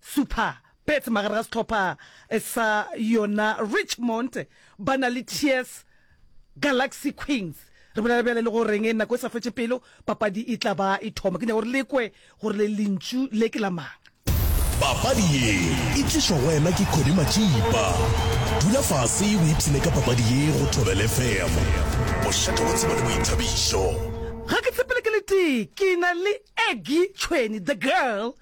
Super Pets magare ga sehlopha sa yona Richmond ba na le Tears Galaxy Queens. Re bolela bjale le go reng nako e sa fetše pelo papadi e tla ba e thoma. Ke nyaka gore le kwe gore le lentšu le ke la mang. Papadi ye e tlišwa go wena ke Connie Matšipa. Dula fase o ipshine ka papadi ye go Thobela FM. Bošego bo tseba le boithabišo. Ga ke tsepele ke letee ke na le Aggie Tšhweni, The Girl,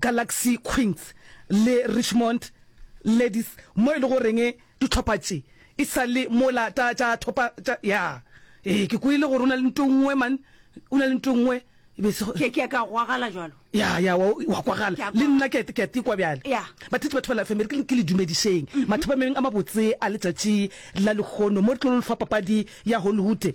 Galaxy Queens le Richmond Ladies mo e le goreng dihlopha tše e sa le mola tša tša thopa tša ya ee ke kwele gore o na le nto nngwe man o na le nto nngwe e be se ke ke ka gwagala jalo ya ya wa wa kwagala le nna ke ke te kwa bjale ya bathetsi batho ba la family ke le dumedišeng mathopa meng a mabotse a letšatši la lekgono mo re tlo le fa papadi ya Hollywood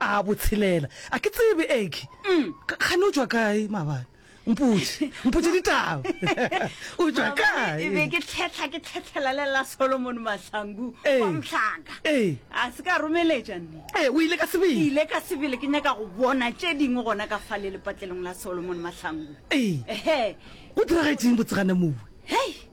A botshelela. A ke tsebe, Eggy. Kgane o tšwa kae, maabane? Mpotše, mpotše ditaba. O tšwa kae? E be ke tlhehla ke tlhehlela le la Solomon Mahlangu wa Mhlaka. A se ka romeletša nne. Ee, o ile ka sebele. Ke ile ka sebele ke nyaka go bona tše dingwe gona ka fale lepatlelong la Solomon Mahlangu. Ee. Ehe. Go diragetšeng botsegana mowe? Hei!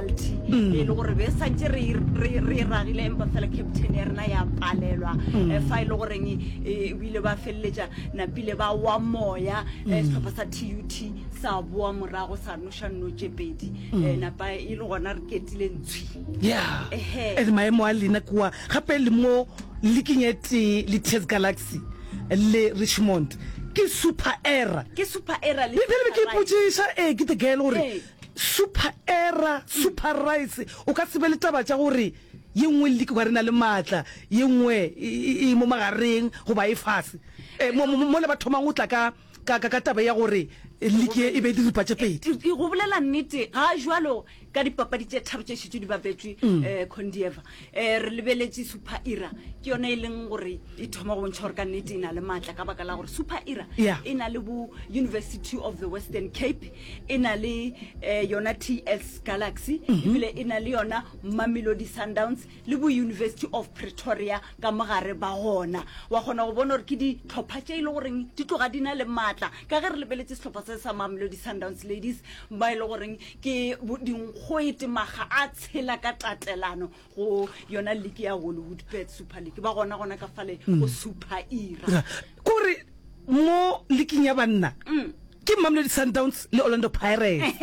penalty mm. e le gore be santse re e ragile empa fela captain ya rena ya palelwa mm. eh, fa e le goreng e, e, o ile ba feleletša napile ba wa moya eh, mm. setlhopha sa tut sa boa morago sa noša nnotše pedi eh, napa e le gona re ketile ntshwi ya and maemo a lena kua gape le mo leking e tee le test galaxy le richmond ke super era ke super era le ke potšiša ee ke the girl gore Super error, super rice. O ka se be le taba tša gore ye nngwe le dikwa re na le maatla ye nngwe e, e, e mo magareng goba e fase e, mo, mo, mo le ba thomang go tla ka ka ka ka taba ya gore liki e be diripa tše pedi E- e- go bolela nnete ga jalo ka dipapadi tše tharo tše šetšo di bapetšwe um condieva E, re lebeletše super era ke yona e leng gore e thoma go bontšha gore ka nnete e na le maatla ka baka la gore super era Yeah. e na le bo university of the western cape e na le eh, yona ts galaxy Mhm. ebile e na le yona mamelodi sundowns le bo university of pretoria ka mogare ba gona wa kgona go bona gore ke ditlhopha tše e le goreng di tloga di na le maatla ka ge re lebeletše setlhopha se sa mamelodi sundowns ladies ba e le goreng Ke dinkgoete maga a tshela ka tatelano go yona liki ya Hollywood Pet Super League ba gona gona ka fale mm. go Super Era. Kore mo liking ya banna mm. ke Mamelodi Sundowns le Orlando Pirates.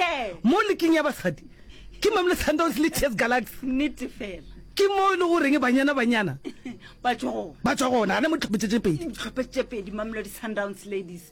Mo liking ya basadi ke Mamelodi Sundowns le Chess Galaxy. Nnete fela. ke mo e le goreng banyana banyana ba tswa gona gane mo tlhopetsetse pedi tlhopetsetse pedi mamelodi sundowns ladies